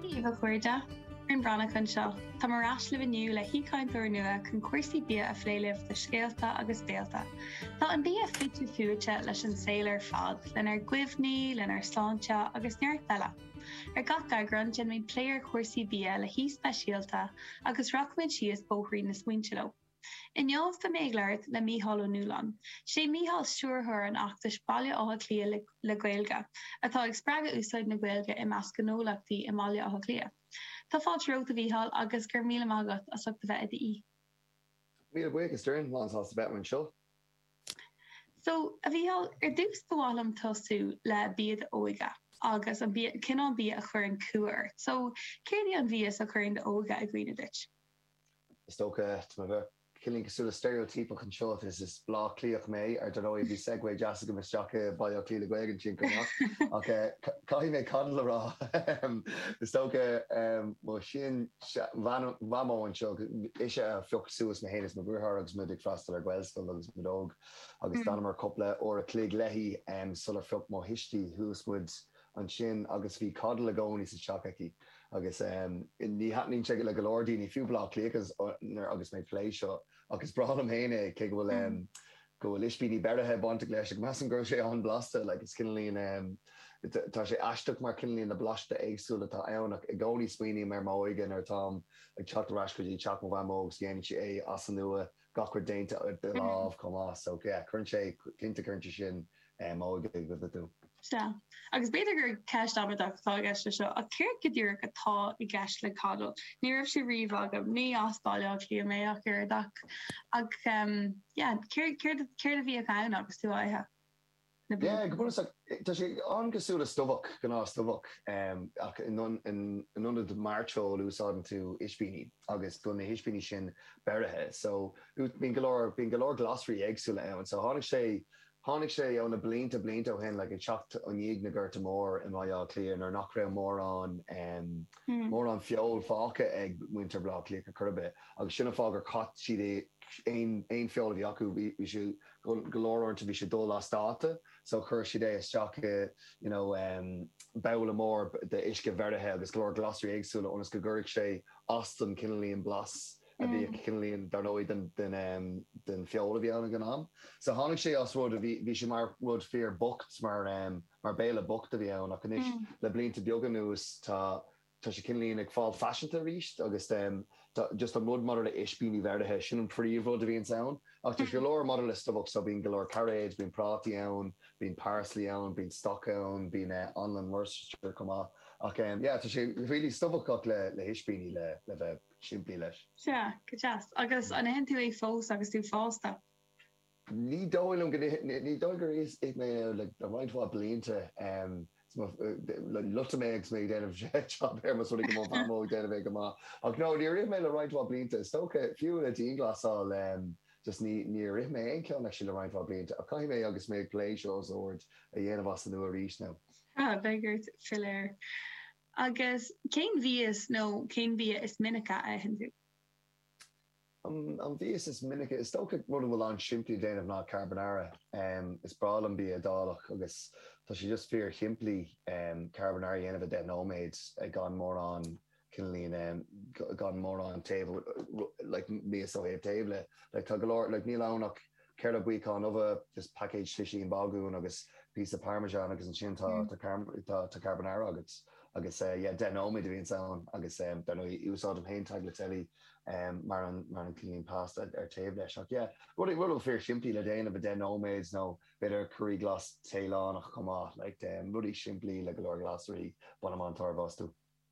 Dia daoibh a chairde, Doireann Bhreathnach anseo. Táim ar ais libh inniu le haoichainteoir nua chun cúrsaí bia a phlé libh le scéalta agus béilte. Tá an bia fite fuaite leis an saol ar fad, lenár gcuimhní, lenár sláinte agus neart eile. Ar gach eagrán, déanfaimid plé ar chúrsaí bia le haoi speisialta agus rachaimid síos bóithrín na smaointe leo. Inniu beidh mé ag labhairt le Mícheál Ó Nualláin. Is é Mícheál stiúrthóir an fheachtais Baile Átha Cliath le Gaeilge, atá ag spreagadh úsáid na Gaeilge i measc gnólachtaí i mBaile Átha Cliath. Tá fáilte romhat a Mhícheál agus go raibh míle maith agat as ucht a bheith i d'aoi. Míle buíochas Doireann, lán sásta a bheith anseo. So, a Mhícheál, ar dtús ba mhaith liom tosú le bia d'óige agus an bia, cineál bia a chuireann cumha ort. So, céard í an mhias a chuireann d'óige i gcuimhne duit? Is dócha, tá mé cineálín cosúil le steiréotíopacht anseo, is is Bleá Cliathach mé, ar ndóigh bhí segue deas agam isteach i Baile Átha Cliath le Gaeilge an tionscnamh, ach caithfidh mé coddle a rá, is dócha, mo shean-Mhamó anseo, ise a phioc suas mé féin is mo dheartháir agus muid ag freastal ar Ghaelscoil agus muid óg agus d'fhanamar cúpla uair a' chloig léi sular phioc mo thuistí, suas muid ansin agus bhí coddle i gcónaí sa teach aici agus em ní thaitníonn sé le go leor daoine, fiú Bleá Cliathaigh agus mé ag plé seo ach is breá liom féin é cé go bhfuil em go bhfuil ispíní beirithe bainteach leis ach measaim go bhfuil sé an-bhlasta like it's cineálín em tá sé aisteach mar cineálín na blasta éagsúil atá ann ach i gcónaí smaoiním ar m'óige nuair atáim ag teacht ar ais go dtí teach mo mhamó agus déanann sí é as an nua gach rud déanta de láimh chomh maith. So yeah cuireann sé, cinnte cuireann sé sin m'óige i gcuimhne dom. Sea. Agus b'fhéidir gur ceist amaideach atá i gceist leis seo, ach céard go díreach atá i gceist le coddle? Ní raibh sé riamh agam. Ní as Baile Átha Cliath mé ach oiread ach, ach ehm yeah céard, céard, céard a bhíodh ann agus tú á ithe? na bliana. Go bunúsach, tá sé an-chosúil le stobhach, gnáthstobhach, ach in ionad mairteoil úsáideann tú ispíní agus bíonn na hispíní sin beirithe. So, bíonn go leor, bíonn go leor glasraí éagsúla ann. So, tháinig sé, tháinig sé ó na blianta, blianta ó shin, like ag teacht ó i ndiaidh na Gorta Mór i mBaile Átha Cliath nuair nach raibh mórán, mórán feoil fágtha ag muintir Bhaile Átha Cliath chor ar bith agus sin an fáth gur chaith siad aon, aon, aon feoil a bhí acu, bhí siad, Bhuel, go leor uaireanta bhí sé dul as dáta, so chuir siad é isteach i you know babhla mór d'uisce bheirithe agus go leor glasraí éagsúla ionas go gcuirfeadh sé as don cineálín blas a bhí, cineálín dar ndóigh den feoil a bhí ann ag an am. So tháinig sé as rud a bhí, bhí sé mar rud fíor bocht, mar béile bocht a bhí ann ach anois le blianta beaga anuas tá Tá sé cineáilín ag fáil faiseanta arís agus just an rud maidir le ispíní bheirithe, sin an príomh rud a bhíonns ann. Ach tá sé go leor maidir le stobhach so bíonn go leor cairéid, bíonn prátaí ann, bíonn parsley ann, bíonn stoc ann, bíonn anlann Worcestershire chomh maith. Ach yeah, tá sé really stobhach ach le hispíní le bheith simplí leis. Sea, go deas. Agus an itheann tú é fós agus tú fásta? Ní dóigh liom go, ní dóigh gur ith mé le roinnt mhaith blianta. Loiteadh mé agus mé ag déanamh é ar mo shon go mbeadh amú ag déanamh é go maith. Ach no, níor ith mé le roinnt mhaith blianta. Is dócha, fiú le dianghlasáil, just níor ith mé aon cheann actually le roinnt mhaith blianta. Ach caithfidh mé, agus mé ag plé seo os ard, a dhéanamh as an nua arís now. Tá, beidh ort b'fhéidir. Agus cén mhias nó cén bia is minice a itheann tú? An mhias is minice. Is dócha rud a bhfuil an-simplí a dhéanamh ná carbonara. Is breá liom bia Iodálach agus tá sé just fíor shimplí carbonara a dhéanamh i 10 nóiméad gan mórán cineáilín gan mórán taobh like miasa taobh taobh leis. Like tá go leor like níl ann ach Ceithre buíocán ubha is paicéad slisín bágún agus píosa parmesan agus ansin tá tá carbonara agat agus yeah deich nóiméad a bhíonns ann agus dar ndóigh úsáidim féin tagliatelle mar an mar an cineáilín pasta ar taobh leis ach yeah rud a rud fíor simplí le déanamh i deich nóiméad nó b'fhéidir curry glas Téalannach chomh maith like rudaí simplí le go leor glasraí bainim an-tairbhe astu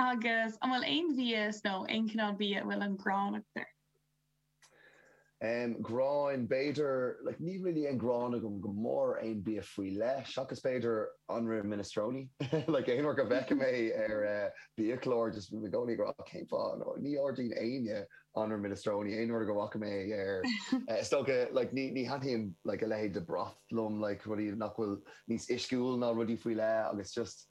Agus an bhfuil aon mhias nó aon chineál bia a bhfuil an ghráin agat air? Em, gráin, b'fhéidir, like, níl really aon ghráin agam go mór ar aon bia faoi leith, seachas b'fhéidir anraith minestrone, like, aon uair go bhfeicim é ar, eh, biachlár, just i gcónaí ag rá, oh, cén fáth, no, ní ordaíonn éinne anraith minestrone aon uair go bhfaca mé é ar, eh, is dócha, like, ní, ní thaitníonn, like, a leithéid de broth liom, like, rudaí nach bhfuil níos uisciúil ná rudaí faoi leith agus just,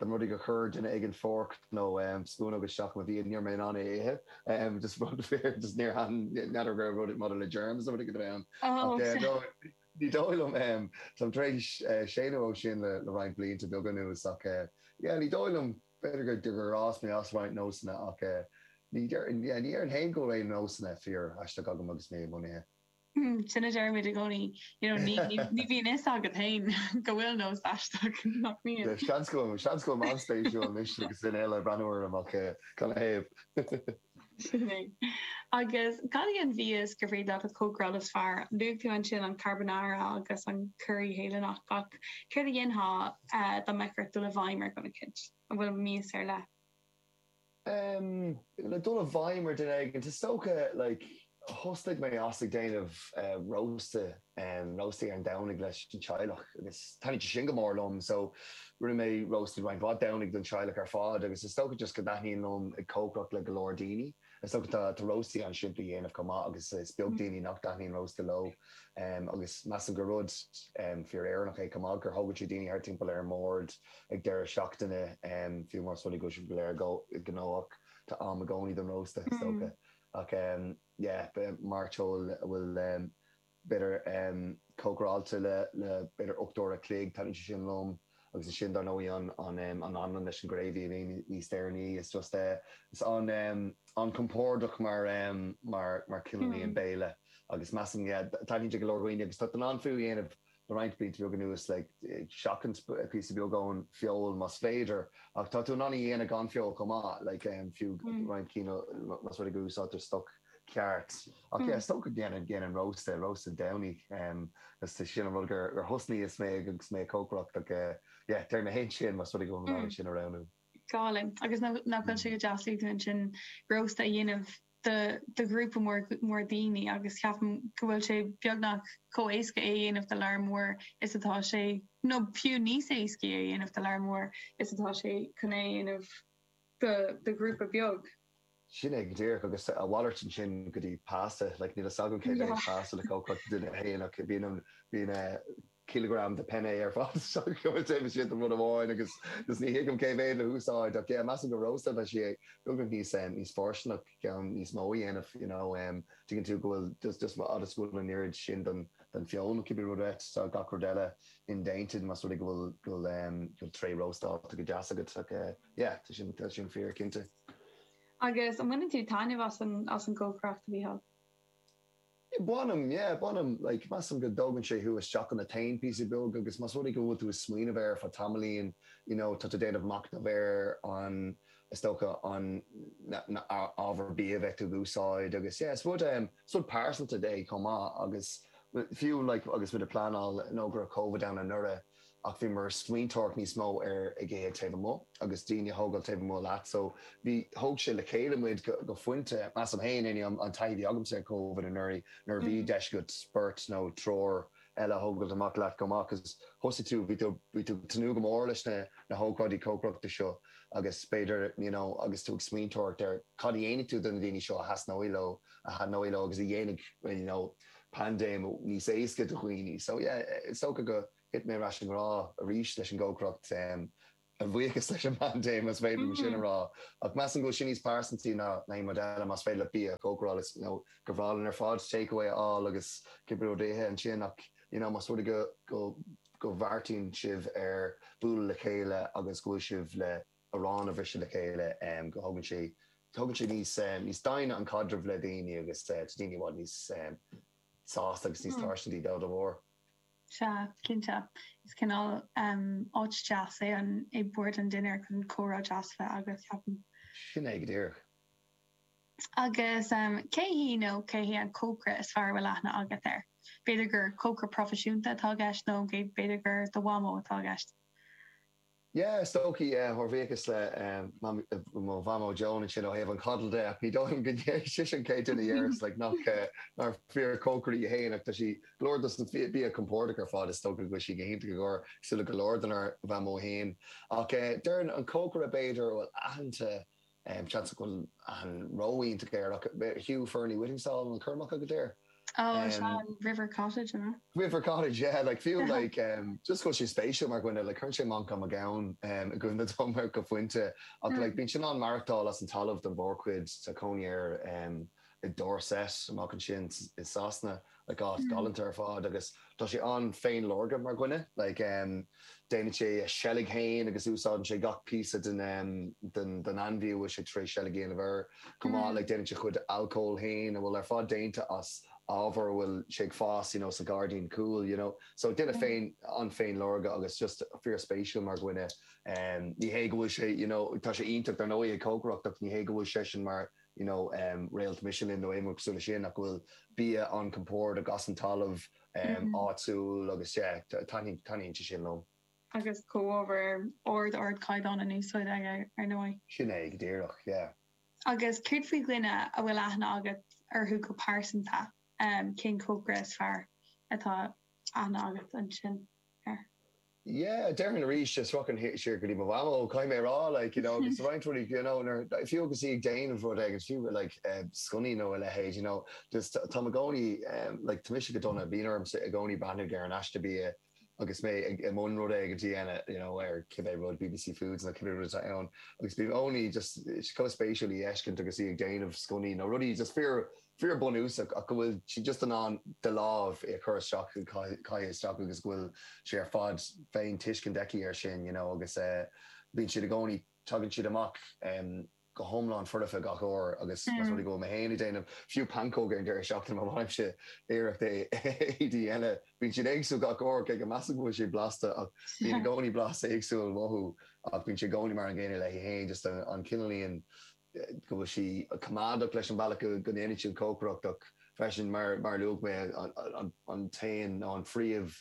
an rud gur chuir duine éigin forc nó spúnóg isteach i mo bhia, ní raibh mé in ann é a ithe, just rud fíor, just níor, n'fheadar gur rud maidir le germs nó rud éigin a bhí ann ach ní dóigh liom, táim tar éis séimhiú ó shin le roinnt blianta beaga anuas ach yeah, ní dóigh liom, b'fhéidir gur fhás mé as roinnt nósanna ach ní dheir, yeah, ní dhéarfainn féin go bhfuil aon nósanna fíor aisteach agam agus mé i mbun ithe. Sin a deir muid i gcónaí, you know, ní, ní, ní bhíonn fhios agat fhéin go bhfuil nós aisteach, nach mbíonn? Seans go bhfuil, seans go bhfuil mé an-spéisiúil anois agus duine eile ag breathnú orm ach gan a thaobh. Sin é. Agus cad í an mhias gur féidir leat a chócaráil is fearr, luaigh tú ansin an carbonara agus an curry Théalannach, ach céard a dhéanfá dá mbeifeá ag dul i bhfeidhm ar dhuine eicínt? An bhfuil mias ar leith? Em, le dul i bhfeidhm ar duine éigin, is dócha, like, thosnaigh mé ag déanamh eh rósta, em, róstaí ar an Domhnaigh leis an teaghlach agus thaitnigh sé sin go mór liom so rinne mé rósta roinnt mhaith Domhnaigh don teaghlach ar fad agus is dócha just go dtaitníonn liom ag cócaireacht le go leor daoine. Is dócha tá róstaí an-simplí a dhéanamh chomh maith agus is beag daoine nach dtaitníonn rósta leo. Agus measaim gur rud fíor Éireannach é chomh maith gur thógann sé daoine thart timpeall ar an mbord ag deireadh seachtaine, fiú más rud é go bhfuil sibh go léir gnóthach, tá am i gcónaí don rósta is dócha. Ach yeah, mairteoil a bhfuil b'fhéidir, cócaráilte le b'fhéidir ocht n- uaire an chloig, taitníonn sé sin liom. Agus ansin, dar ndóigh, an anlann leis an gravy a bhíonn níos deireanaí, is just eh, is an-chompordach mar chineál í an béile. Agus measaim, yeah, taitníonn sé le go leor daoine agus tá tú in ann é fiú a dhéanamh le roinnt blianta beag anuas, like, ag seachaint píosa beag ón feoil más féidir, ach tá tú in ann í a dhéanamh gan feoil chomh maith, like, fiú roinnt cinn, más rud é go n-úsáidtear stoc. ceart. Ach yeah, is dócha go ndéanann, déanann rósta, rósta Domhnaigh. Is é sin an rud gur thosnaigh mé agus mé ag cócaireacht ach yeah, déarfainn féin sin, más rud é go bhfuil ceann amháin le roghnú. Go hálainn, agus nach bhfuil sé go deas tá tú in ann rósta a dhéanamh do do ghrúpa mór, mór daoine agus ceapaim go bhfuil sé beagnach chomh éasca é a dhéanamh do lear mór is atá sé, nó fiú níos éasca é a dhéanamh do lear mór is atá sé chun é a dhéanamh do do ghrúpa beag. Sin é, go díreach, agus a mhalairt ansin go dtí pasta, like, níl a fhios agam cé mhéad Yeah. pasta le haghaidh cuid duine féin, ach bíonn an, bíonn eh, cileagram de penne ar fad isteach acu, is déanaí siad do rud amháin, agus, agus ní thuigim cé mhéad le húsáid, ach yeah, measaim go rósta leis í, beagnach níos eh, níos fusa, ceann níos mó a dhéanamh, you know, em, tuigeann tú go bhfuil, just, just fhad is go bhfuil an oiread sin den, den feoil, ceannaithe agat, tá gach rud eile indéanta, más rud é go bhfuil, go bhfuil em, go bhfuil tray róstála go deas agat, ach eh, Yeah, tá sin, tá sin fíor, cinnte. Agus an mbaineann tú taitneamh as an, as an gcócaireacht, a Mhícheáil? Yeah, bainim, yeah, bainim. Like, measaim go dtógann sé thú isteach sa zone píosa beag agus más rud é go bhfuil tú ag smaoineamh air ar feadh tamaillín, you know, tá tú ag déanamh machnamh ar an, is dócha, an, na, na, na ábhair bia a bheidh tú ag úsáid agus, yeah, is rud, em, is rud pearsanta é chomh maith agus fiú, like, agus muid ag pleanáil, you know, go raibh Covid ann anuraidh, ach bhíomar ag smaointeoireacht níos mó ar ag ithe taobh amuigh agus daoine a thógáil taobh amuigh leat so bhí thóg sé le chéile muid go go phointe. Measaim féin anyway an an taithí a bhí agamsa ar Covid anuraidh nuair a bhí deis agat beirt nó triúr eile a thógáilt amach leat go mb'fhéidir 'cause thosaigh tú bhí tú bhí tú ag tnúth go mór leis na na hócáidí cócaireachta seo agus b'fhéidir you know agus tú ag smaointeoireacht ar cad a dhéanfaidh tú do na daoine seo a thasnóidh leo a thaitneoidh leo agus a dhéanfaidh you know paindéim níos éasca do dhaoine. So yeah, is dócha go thit mé ar ais i ngrá arís leis an gcócaireacht, a bhuíochas leis an bpaindéim, más féidir liom sin a rá. Ach measaim go bhfuil sin níos pearsantaí ná aon rud eile, más féidir leat bia a chócaráil, is, you know, go breá linn ar fad takeaway a fháil agus cibé rud a ithe ansin ach, you know, más rud é go mbeartaíonn sibh ar bualadh le chéile agus go bhfuil sibh le arán a bhriseadh le chéile, go thugann sé thugann sé níos níos doimhne don chaidreamh le daoine agus tá daoine i bhfad níos sásta agus níos tuisceanaí dá bharr. Sea, cinnte. Is cineál áit deas é an é bord an dinnéir chun comhrá deas bheith agat, ceapaim. Sin é go díreach. Agus cé hí nó cé hé an cócaire is fearr a bhfuil aithne agat air? B'fhéidir gur cócaire proifisiúnta atá i gceist nó b'fhéidir gur do mhamó atá i gceist. Yeah, is dócha é. A bhuíochas le mo Mhamó Joan ansin ó thaobh an chadail de, ach ní dóigh liom gurb í sise an chéad duine a dhéarfas like nach, nár fíorchócaire í fhéin ach tá sí go leor dos na bia compordach ar fad is dócha go bhfuil sí go hiontach i gcomhair cosúil le go leor dár Mamó fhéin ach eh deireann an cócaire b'fhéidir bhuel aitheanta Seans go bhfuil sé saghas roinnt géar ach Hugh Fearnley-Whittingstall an Coirmeacha go dtéar. Ó is ea, an River Cottage an ea? River Cottage yeah, like fiú like just go bhfuil sé spéisiúil mar dhuine like cuireann sé Manchán Magan i gcuimhne dom go pointe ach like bíonn seisean ag maireachtáil as an talamh don mhórchuid tá cónaí air i Dorset amach ansin i Sasana áit ghalanta ar fad agus tá sé an-fhéinleor mar dhuine, like déanann sé a sheilg fhéin agus úsáideann sé gach píosa den ainmhí a bhfuil sé tar éis seilg a dhéanamh air chomh maith, like déanann sé a chuid alcóil fhéin a bhfuil ar fad déanta as ábhar a bhfuil sé ag fás you know sa ghairdín cúil you know. So duine an-, an-fhéinleor agus just fíorspéisiúil mar dhuine. Ní hé go bhfuil sé you know tá sé iontach dar ndóigh ag cócaireacht ach ní hé go bhfuil seisean mar you know réalt Michelin nó aon rud cosúil le sin ach go bhfuil bia an compoird agus ón talamh áitiúil agus yeah taitníonn taitníonn sé sin liom. Agus comhábhair ar ardchaighdeán in úsáid aige ar ndóigh. Sin é go díreach yeah. Agus céard faoi dhuine a bhfuil aithne agat orthu go pearsanta, cén cócaire is fearr atá aithne agat ansin air? yeah, déarfainn arís, sroicheann siar go dtí mo mhamó, caithfidh mé a rá, like, you know, agus roinnt rudaí, you know, nuair, fiú agus í ag déanamh rud éigin, fiú like eh sconnaí nó a leithéid, you know, just táim i gcónaí em, like, tá mise go dona, bíonn ormsa i gcónaí breathnú ar an aiste bia agus mé ag i mbun rud éigin a dhéanamh, you know, ar cibé rud, BBC Foods nó cibé rud atá ann, agus bím i gcónaí just, eh, chomh spéisiúil í a fheiscint agus í ag déanamh sconnaí nó rudaí just fíor, fíorbhunúsach ach go bhfuil siad just in ann de láimh é a chur isteach a chaith isteach agus go bhfuil sé ar fad faoin tuiscint aici ar sin you know agus eh bíonn siad i gcónaí tagann siad amach em go hiomlán foirfe gach uair agus más rud é go bhfuil mé féin ag déanamh fiú pancóga ar an deireadh seachtaine má dhéanaimse iarracht é a dhéanamh bíonn siad éagsúil gach uair cé go measaim go bhfuil siad blasta ach bíonn i gcónaí blas éagsúil uathu ach bíonn sé i gcónaí mar an gcéanna léi féin just an cineál íon go bhfuil sí coimeádach leis an bhealach go ndéanann sí cócaireacht ach freisin, mar a luaigh mé, an t-aon nó an phríomh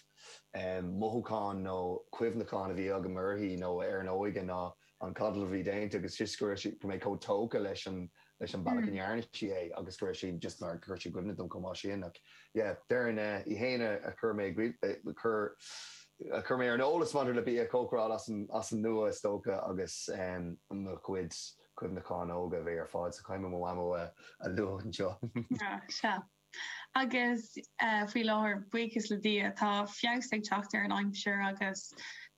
mothúchán nó cuimhneachán a bhí agam uirthi nó ar an óige ná an codal a bhí déanta agus just go raibh sí, go raibh mé chomh tógtha leis an bhealach a ndearna sí é agus go raibh sí just mar, go gcuireann sé i gcuimhne dom chomh maith sin ach. yeah Darina Uí Éanna a chuir mé a chuir mé ar an eolas maidir le bia a chócaráil as an as an nua is dócha agus mo chuid cuimhneacháin óga a bheith ar fad sa chaoi mo mhamó a a lua anseo. Ach sea. Agus faoi láthair, buíochas le Dia, tá feabhas ag teacht ar an aimsir agus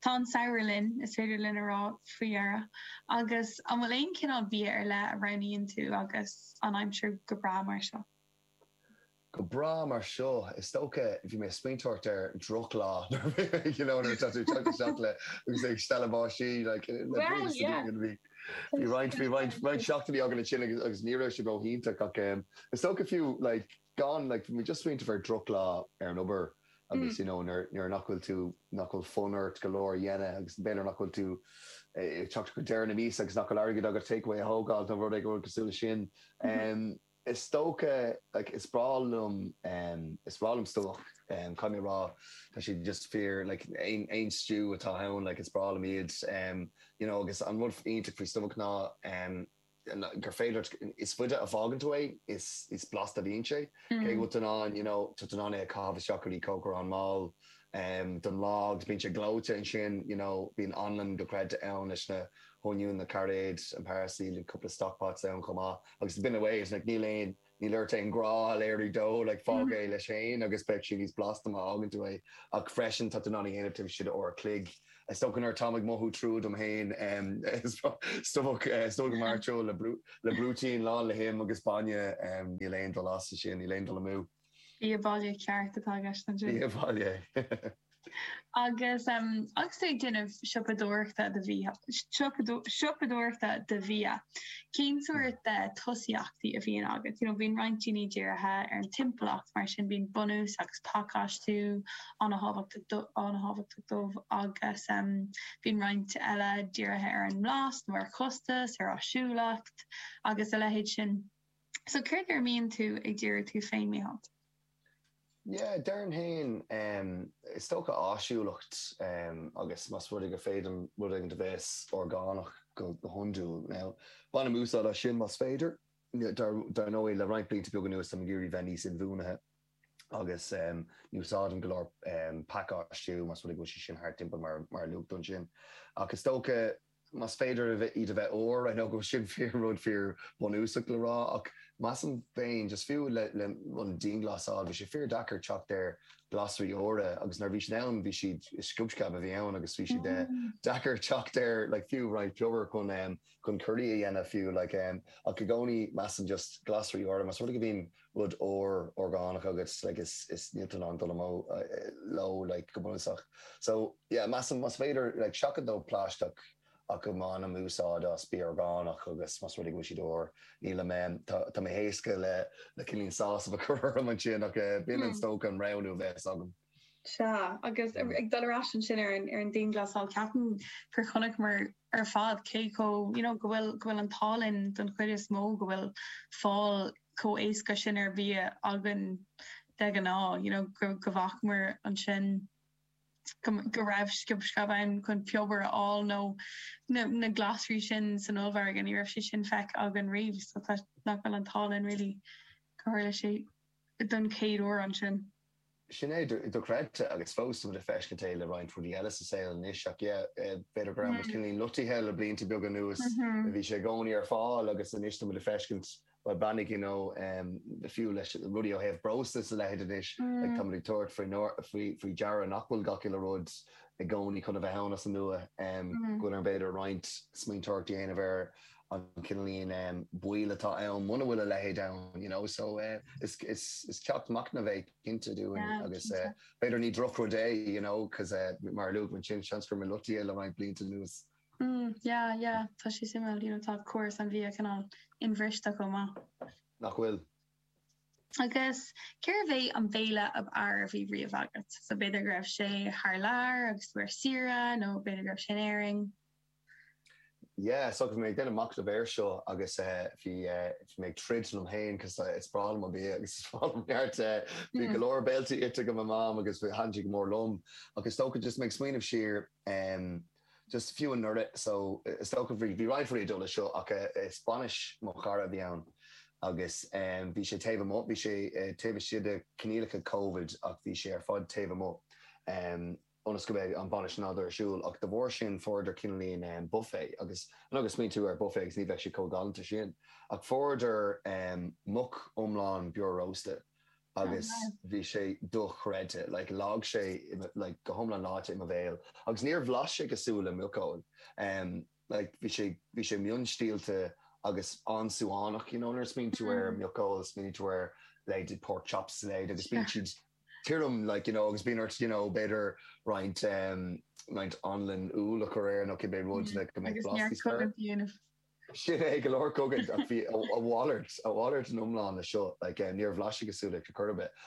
tá an samhradh linn, is féidir linn a rá faoi dheireadh. Agus an bhfuil aon chineál bia ar leith a roghnaíonn tú agus an aimsir go breá mar seo? Go breá mar seo, is dócha. Bhí mé ag smaointeamh ar drochlá nuair a bhí tú ag teacht isteach le agus ag stealladh báistí le blianta sa diaidh. Bhí roinnt roinnt seachtainí againn ansin agus ní raibh sé ró-iontach ach is dócha fiú gan like bhí mé just ag smaointeamh ar drochlá ar an obair agus you know nuair nach bhfuil tú nach bhfuil fonn ort go leor a dhéanamh agus b'fhéidir nach bhfuil tú ag teacht go deireadh na míosa agus nach bhfuil airgead agat takeaway a thógáil nó rud éigin cosúil leis sin. Is dócha, like, is breá liom, is breá liom stobhach, caithfidh mé a rá, tá siad just fíor, like, aon, aon stew atá ann, like, is breá liom iad, you know, agus an rud iontach faoi stobhach ná gur féidir leat, is faide a fhágann tú é, is, is blasta a bhíonn sé, cé go bhfuil tú in ann, you know, tá tú in ann é a chaitheamh isteach go dtí cócaireán mall don lá, agus bíonn sé gleoite ansin, you know, bíonn anlann gleoite ann leis na. oinniún na cairéid an parsley, like cúpla stock pots ann chomh maith, agus away with it, like níl aon, níl ort aon ghrá a léiriú dó, like fág é leis féin agus beidh sé níos blasta má fhágann tú é, ach freisin tá tú in ann a dhéanamh taobh istigh d'uair a chloig. Is dócha nuair atáim ag mothú trua dom féin, em, is dócha, is dócha go mairim ar brúitín lán le him agus bainne, em, níl aon dul as ansin, níl aon dul amú. Bia baile ceart atá i gceist anseo. Bia baile. Agus agus tú ag déanamh siopadóireachta do bhia, siopadóireachta do bhia, cén sórt tosaíochtaí a bhíonn agat? You know bíonn roinnt daoine dírithe ar an timpeallacht, mar sin bíonn bunús agus pacáistiú á an-an-tábhachtach dóibh agus bíonn roinnt eile dírithe ar an mblas nó ar chostas, ar áisiúlacht agus a leithéid sin. So céard ar a mbíonn tú ag díriú tú féin, Mícheál? Yeah, deirim féin, em, is dócha áisiúlacht, em, agus más rud é gur féidir liom rud éigin a bheas orgánach go hiondúil. Now, bainim úsáid as sin más féidir. Dar, dar ndóigh, le roinnt blianta beaga anuas táim ag iarraidh bheith níos inbhuanaithe agus, em, ní úsáidim go leor, em, pacáistiú más rud é go bhfuil sé sin thart timpeall mar, mar a luaigh tú ansin. Ach is dócha. más féidir iad a bheith úr, I know go bhfuil sin fíor, rud fíor bunúsach le rá, ach measaim féin, just fiú le an dianghlasáil, bhí sé fíor deacair teacht ar glasraí úra agus nuair a bhí siad ann, bhí siad, sciob sceab a bhí ann agus bhí siad deacair teacht ar like fiú roinnt piobair chun chun curraí a dhéanamh fiú like ach i gcónaí measaim just glasraí úra, más rud é go bhíonn rud úr orgánach agat like is is níl tú in ann dul amú leo like go bunúsach so yeah measaim más féidir like seachaint ó phlaisteach ach go mbainim úsáid as bia orgánach agus más rud é go bhfuil siad úr nílim em tá tá mé éasca le le cineálín sásamh a chur orm ansin ach eh b'in is dócha an roghnú a bheas agam. Sea, agus ag dul ar ais ansin ar an dianghlasáil, ceapaim gur chonaiceamar ar fad cé chomh, you know, go bhfuil, go bhfuil an t-ádh linn don chuid is mó go bhfuil fáil chomh éasca sin ar bhia againn de ghnáth, you know, go, go bhfacamar ansin go, go raibh sciob sceab ann chun piobar a fháil nó na, na glasraí sin san ollmhargadh, ní raibh sé sin feicthe againn riamh, so tá, nach bhfuil an t-ádh linn really gur tharla sé don chéad uair ansin. Sin é, dochreidte, agus fós tá muid ag feiscint é le roinnt rudaí eile sa saol anois, ach yeah, b'fhéidir go raibh muid cineálín loitithe le blianta beaga anuas, bhí sé i gcónaí ar fáil agus anois tá muid ag feiscint bhuel, beannaigh you know, fiú le rudaí ó thaobh breosla is a leithéid anois, like tá muid ag tabhairt faoi faoi deara nach bhfuil gach uile rud i gcónaí chun a bheith ann as an nua, go bhfuil orainn b'fhéidir roinnt smaointeoireachta a dhéanamh ar. an cineálín baoil atá ann muna bhfuil a leithéid ann, you know, so is ceacht machnaimh é cinnte dúinn agus b'fhéidir ní drochrud é, you know, cause mar a luaigh ansin, seans go raibh muid loitithe le roinnt blianta anuas. Mm, yeah, yeah, tá sé suimiúil, you know, tá córas an bhia cineál inbhriste chomh maith. Nach bhfuil? Agus cérbh é an béile ab fhearr a bhí riamh agat? So b'fhéidir go raibh sé thar lear agus tú ar saoire nó b'fhéidir go raibh sé in Éirinn? Yeah so bhí mé ag déanamh machnamh air seo agus bhí bhí mé ag troid liom féin cos is breá liom an bia agus is breá liom neart eh. Bhí go leor béiltí ite agam ó Mam agus a thaitin go mór liom ach is dócha just mé ag smaoineamh siar em just fiú anuraidh so is dócha bhí bhí roinnt rudaí ag dul leis seo ach eh is bainis mo chara a bhí ann agus em bhí sé taobh amuigh bhí sé eh taobh istigh de coinníollacha covid ach bhí sé ar fad taobh amuigh em ionas go mbeidh an bainis in ann dul ar siúl, ach de bharr sin fuaireadar cineálín buffet, agus anois smaoiníonn tú ar buffet agus ní bheadh sé chomh galánta sin, ach fuaireadar muc iomlán beo rósta agus bhí sé dochreidte, like leag sé like go hiomlán leáite i mo bhéal agus níor bhlais sé cosúil le muiceoil. Like bhí sé bhí sé mion-stiallta agus an-súmhar, you know, nuair a smaoiníonn tú ar muiceoil, smaoiníonn tú ar leithéidí pork chops is a leithéid agus bíonn siad tirim, like, you know, agus bíonn ort, you know, b'fhéidir roinnt ehm roinnt anlann úll a chur air nó cibé rud le go mbeidh blas níos fearr. Sin é, go leor cogaint ach a mhalairt a mhalairt iomlán le seo, like, eh, níor bhlais sé cosúil leis ar chor ar bith.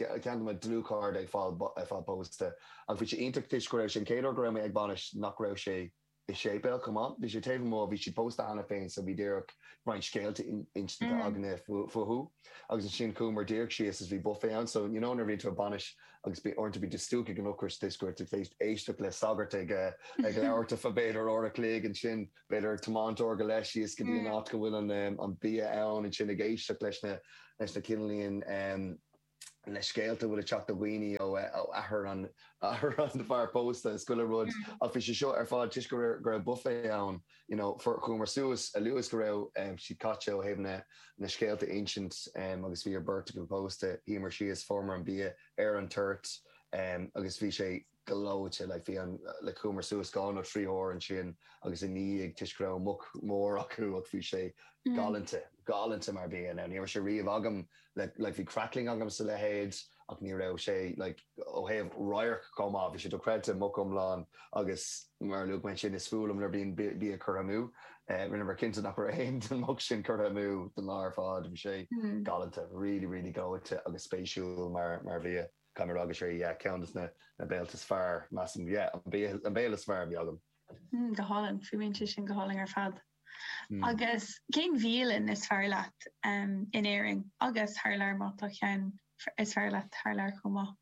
Ceann de mo dhlúthchairde ag fáil pósta agus bhí sé iontach toisc go raibh sé an chéad uair go raibh mé ag bainis nach raibh sé i séipéal chomh maith. Bhí sé taobh amuigh, bhí siad pósta cheana féin so bhí díreach roinnt scéalta inste againne fúthu agus ansin chuamar díreach síos is bhí buffet ann so you know nuair a bhíonn tú ag bainis agus uaireanta bíonn tú stiúgtha ag an ocras toisc go raibh tú tar éis éisteacht le sagart ag labhairt ar feadh b'fhéidir uair a chloig ansin b'fhéidir ag tiomáint uair go leith síos go dtí an áit go bhfuil an bia ann, ansin ag éisteacht leis na cineálín, na scéalta a bhfuil ag teacht ó dhaoine ó athair an fear pósta is chuile rud, ach bhí sé seo ar fad toisc go raibh buffet ann, you know, fuair, chuamar suas a luaithe is go raibh siad críochnaithe ó thaobh na scéalta a insint agus bhí an bheirt acu pósta, shuíomar síos, fuaireamar an bia ar an toirt agus bhí sé gleoite. Bhí an, like, chuamar suas dhá nó trí huair ansin ina dhiaidh toisc go raibh muc mór acu ach bhí sé galánta, galánta mar bia. Now ní raibh sé riamh agam le, like, bhí crackling agam is a leithéid ach ní raibh sé, like, ó thaobh radharc chomh maith, bhí sé dochreidte, muc iomlán agus mar a luaigh mé ansin is fuath liom nuair a bhíonn bia curtha amú. Rinneamar cinnte nach raibh aon den mhuc sin curtha amú don lá ar fad. Bhí sé galánta, really, really gleoite agus spéisiúil mar, mar bhia. Gan a rá go sé yeah ceann de na béilí is fearr, measaim. Yeah, an béile, an béile is fearr a bhí agam. Mm, go hálainn. Fuaimíonn sé sin go hálainn ar fad. Mm. Agus cén bhialann is fearr leat em in Éirinn agus thar lear má tá ceann is fearr leat thar lear chomh maith?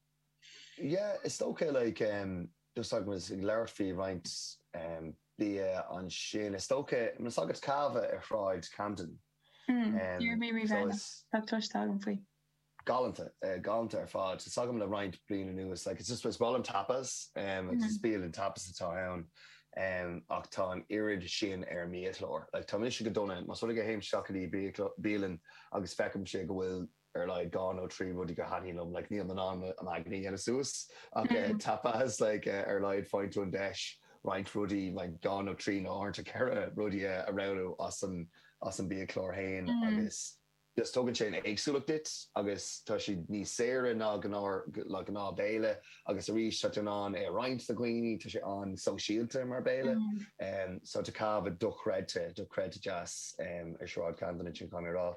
Yeah, is dócha like em just agus muid ag labhairt faoi roinnt em bia ansin, is dócha tá's agat Cava ar shráid Camden. Mm, em, d'iarr mé rí so bhean is. tá cloiste agam faoi. galánta, galánta ar fad. Tá 's agam le roinnt bliain anuas, like it's just, is bialann tapas, is bialann tapas atá ann, ach tá an oiread sin ar an mbiachlár. Like tá mise go dona, más rud é go théim isteach go dtí bialann agus feicimse go bhfuil ar a laghad dhá nó trí rudaí go thaitníonn liom, like nílim in ann m'aigne a dhéanamh suas, ach tapas, like ar a laghad faigheann tú an deis roinnt rudaí, like dhá nó trí nó uaireanta ceithre rudaí a roghnú as an, as an mbiachlár féin agus. So tugann sé an éagsúlacht duit agus tá siad níos saoire ná gnáth béile agus arís tá tú in ann é a roinnt le dhaoine, tá sé an-sóisialta mar béile. Tá Cava dochreidte, dochreidte deas ar Shráid Camden ansin, caithfidh mé a rá.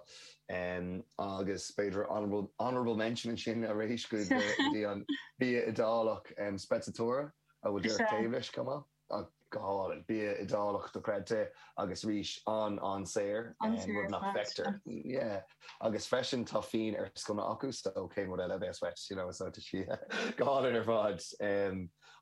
Agus b'fhéidir honourable mention ansin arís go dtí an bia Iodálach, Sprezzatura, a bhfuil díreach taobh leis chomh maith. go hálainn. Bia Iodálach, dochreidte, agus arís an-an-saor, rud nach bhfeictear. Agus freisin, tá fíon ar sconna acu, so cén rud eile a bheas uait, you know? So tá sé go hálainn ar fad.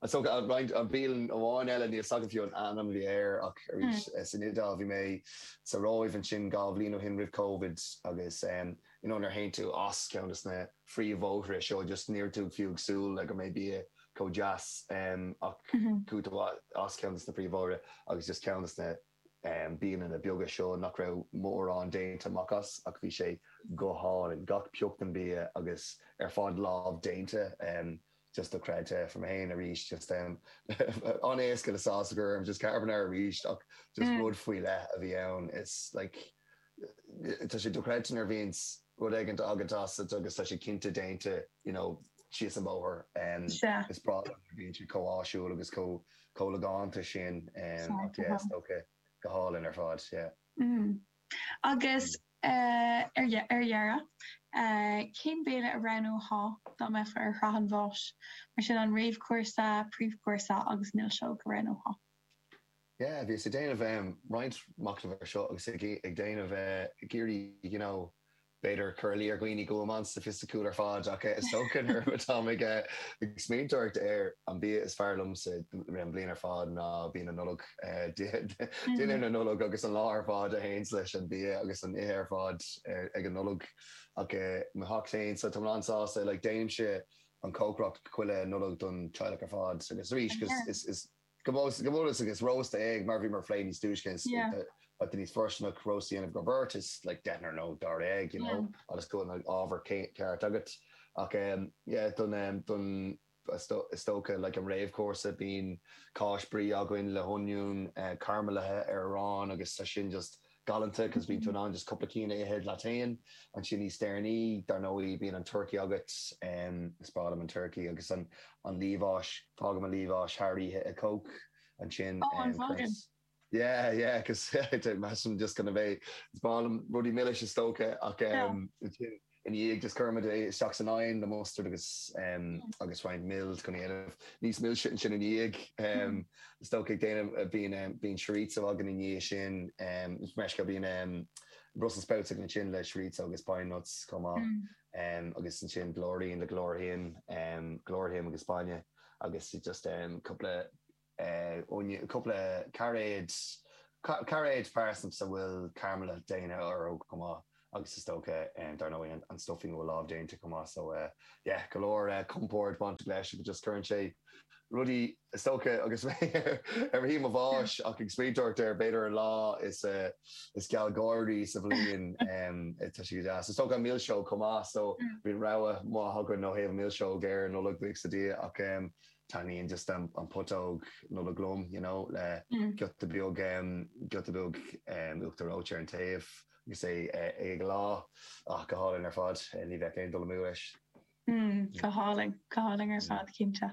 So roinnt, aon bhialann amháin eile, níl 's agam fiú an ainm a bhí air, ach arís, san Iodáil, bhí mé sa Róimh ansin dhá bhliain ó shin, roimh Covid, agus you know nuair a théann tú as ceann de na phríomhbhóithre, seo just, níl tú fiú ag súil le go mbeidh bia chomh deas ach cúpla bóthar as ceann dos na príomh bhóithre agus just ceann dos na bialanna beaga seo nach raibh mórán déanta amach as ach bhí sé go hálainn, gach pioc den bia agus ar fad lámh déanta, just dochreidte fuair mé féin arís just an-éasca le sásamh agam just carbonara arís ach just rud faoi leith a bhí ann is like. tá sé dochreidte nuair a bhíonns rud éigin Iodálach agat agus tá sé cinnte déanta you know thíos an bóthar. Sea. Is breá liom nuair a bhíonn siad chomh háitiúil agus chomh chomh logánta sin Sea, go háirithe yeah, is dócha go hálainn ar fad, yeah. Mm. Agus ar ar dheireadh, cén béile a roghnófá dá mbeifeá ar shraith an bháis? Mar sin an réamhchúrsa, príomhchúrsa agus milseog a roghnófá. yeah bhíos ag déanamh em roinnt machnaimh ar seo agus ag ag déanamh eh ag iarraidh you know b'fhéidir cur in iúl ar dhaoine go bhfuil mé an-sofaisticiúil ar fad ach eh is dócha nuair atáim ag eh ag smaoineamh air an bia is fearr liomsa rith an bhliain ar fad ná bia na Nollag eh dinnéar na Nollag agus an lá ar fad a théanns leis an bia agus an ithe ar fad eh ag an Nollaig ach eh mo theach féin so tá mé an-sásta like déanaimse an cócaireacht chuile Nollaig don teaghlach ar fad agus arís is is is Go mb'ionann agus rósta éigin, mar a bhíomar á phlé níos túisce, níl sé fóirsteanach rósta a dhéanamh do bheirt, is like deichniúr nó dáréag you know agus go bhfuil an ábhar ceart agat. Ach em yeah don em don is dócha like an réamhchúrsa bíonn cáis, brie againn le hoinniún caramellaithe ar arán agus tá sin just galánta cos bíonn tú in ann just cúpla cinn a ithe leat féin ansin níos deireanaí dar ndóigh bíonn an turcaí agat is breá liom an turcaí agus an an liamhás fágaim an liamhás thar oíche i coke ansin oh an fágaim yeah yeah cos measaim just gan a bheith is breá liom rudaí milis is dócha ach ansin Ina dhiaidh sin chuireamar é isteach san oigheann le mustard agus agus roinnt mil chun é a dhéanamh níos milse ansin ina dhiaidh. Is dócha ag déanamh bíonn chorizo againn ina dhiaidh sin is dócha bíonn brussels sprouts againn ansin le chorizo agus pine nuts chomh maith agus ansin blúirín le glóir thinn glóir thiom agus bainne agus just cúpla cúpla cairéad, cairéid, parsnips a bhfuil caramalú déanta orthu chomh maith agus is dócha, dar ndóigh, an stuffing a bhfuil lámh déanta chomh maith. So yeah, go leor compord bainteach leis agus just cuireann sé rudaí, is dócha, agus mé ar mo shuí i mo bháis ach ag smaoineamh air, b'fhéidir an lá is gealgháirí sa bhliain tá sé go deas. Is dócha an milseog chomh maith, so bíonn rogha maith againn ó thaobh an mhilseog ar an Nollaig, bíodh sa diaidh, ach taitníonn just an an putóg Nollag liom you know le giota beag giota beag uachtar reoite ar an taobh agus é ag leá ach go hálainn ar fad ní bheadh aon dul amú leis. Go hálainn go hálainn ar fad cinnte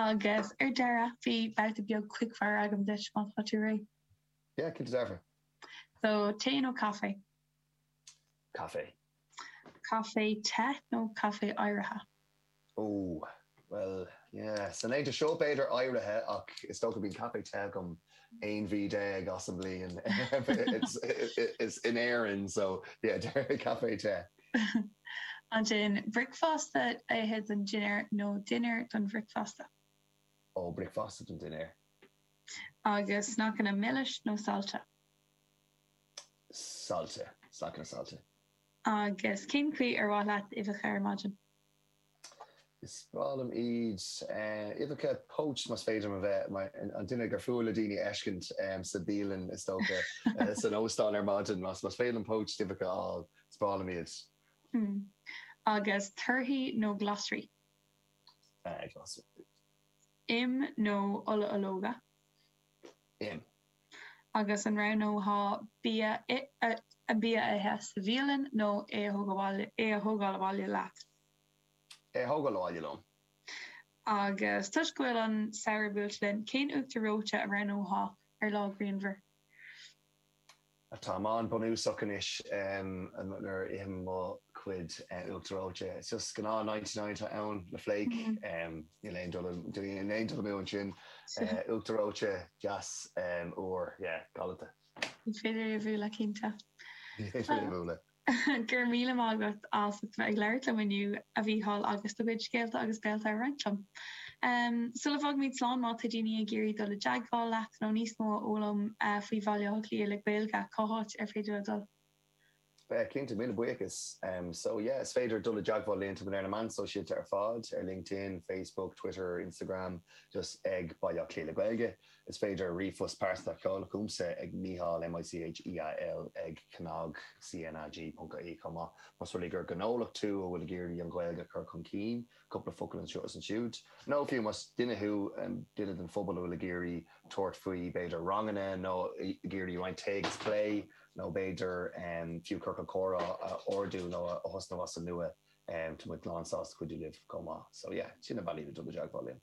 agus ar deireadh bhí babhta beag quickfire agam duit má tá tú réidh. Yeah cinnte dearfa. So tae nó caife? Caife. Caife te nó caife oighrithe? Ó, bhuel, yeah. San aimsir seo b'fhéidir oighrithe, ach is dócha go mbíonn caife te agam aon mhí déag as an mbliain in Éirinn, so yeah, déarfainn caife te. Ansin, bricfeasta a ithe don dinnéar nó dinnéar don bhricfeasta? Ó, bricfeasta don dinnéar. Agus snaiceanna milis nó saillte? saillte, sneaiceanna saillte. Agus cén chaoi ar mhaith leat uibheacha ar maidin? Is breá liom iad. Uibheacha poached más féidir liom a bheith mar an duine gur fuath le daoine a fheiscint sa bialann is dócha, san óstán ar maidin. Más féidir liom poached uibheacha a fháil, is breá liom iad. Hmm. Agus torthaí nó glasraí? Glasraí. Im nó ola ológa? Im. agus an roghnófá bia a ithe sa bhialann nó é a thógáil abhaile leat? É a thógáil abhaile liom. Agus toisc go bhfuil an samhradh buailte linn, cén uachtar reoite a roghnófá ar lá grianmhar? Táim an-bhunúsach anois nuair a ithim mo chuid uachtar reoite. Is just gnáth ninety nine atá ann, le flake. Níl aon dul amú ansin. Uachtar reoite deas úr, yeah, galanta. Ní féidir é a bhualadh, cinnte. Ní féidir é a bhualadh. Go raibh míle maith agat as ucht a bheith ag labhairt liom inniu, a Mhícheáil, agus do chuid scéalta agus béalta a roinnt liom. Sula bhfágaimid slán, má tá daoine ag iarraidh dul i dteagmháil leat nó níos mó a fhoghlaim faoi Bhaile Átha Cliath le Gaeilge, cá háit ar féidir leo dul? Yeah, cinnte. Míle buíochas. So, yeah, is féidir dul i dteagmháil linn. Tá muid ar na meáin shóisialta ar fad, ar LinkedIn, Facebook, Twitter, Instagram, just ag Baile Átha Cliath le Gaeilge. Is féidir ríomhphost pearsanta a sheoladh chugamsa ag Micheál, M-i-c-h-e-a-l, ag cnag, CNAG, ponc, ie chomh maith, más rud é gur gnólacht tú a bhfuil ag iarraidh an Ghaeilge a chur chun cinn, cúpla focal anseo is ansiúd. Nó fiú, más duine thú, duine den phobal a bhfuil ag iarraidh tabhairt faoi, b'fhéidir, ranganna, nó ag iarraidh roinnt tae agus plé, nó b'fhéidir fiú ciorcal comhrá a ardú nó a thosnú as an nua, tá muid lán sásta cuidiú libh chomh maith. So yeah, sin na bealaí le dul i dteagmháil linn.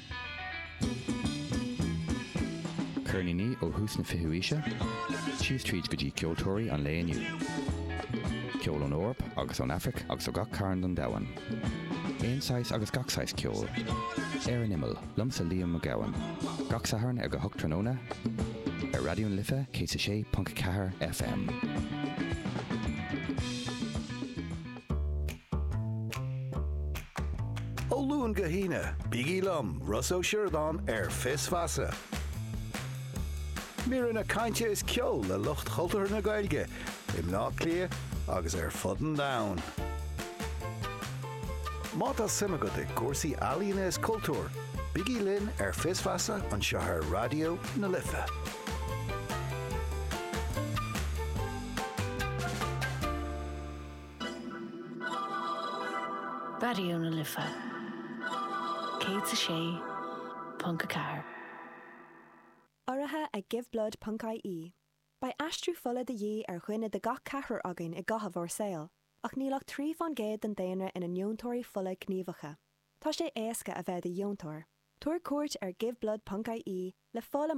Ceirníní ó thús na fichiú aoise síos tríd go dtí ceoltóirí an lae inniu. Ceol ón Eoraip agus ón Aifric agus ó gach cearn den domhan. Aon saghas agus gach saghas ceoil. Ar an Imeall, liomsa Liam Ó Gabhann. Gach Satharn ag a hocht tráthnóna ar Raidió na Life 106.4 FM. Ó Luan go hAoine, bígí liom, Ross Ó Sioradáin, ar Fios Feasa. Míreanna cainte is ceol le lucht chultúrtha na Gaeilge i mBleá Cliath agus ar fud an domhain. Má tá suim agat i gcúrsaí ealaíona is cultúir, bígí linn ar Fios Feasa anseo ar Raidió na Life. Raidió na Life 106.4. Urraithe ag Giveblood ponc ie. Beidh aistriú fola de dhíth ar dhuine de gach ceathrar againn i gcaitheamh ár saoil, ach níl ach trí fán gcéad den daonra ina ndeontóirí fola gníomhacha. Tá sé éasca a bheith i do dheontóir. Tabhair cuairt ar Giveblood ponc ie le fáil amach faoi conas a dhéantar deontas fola.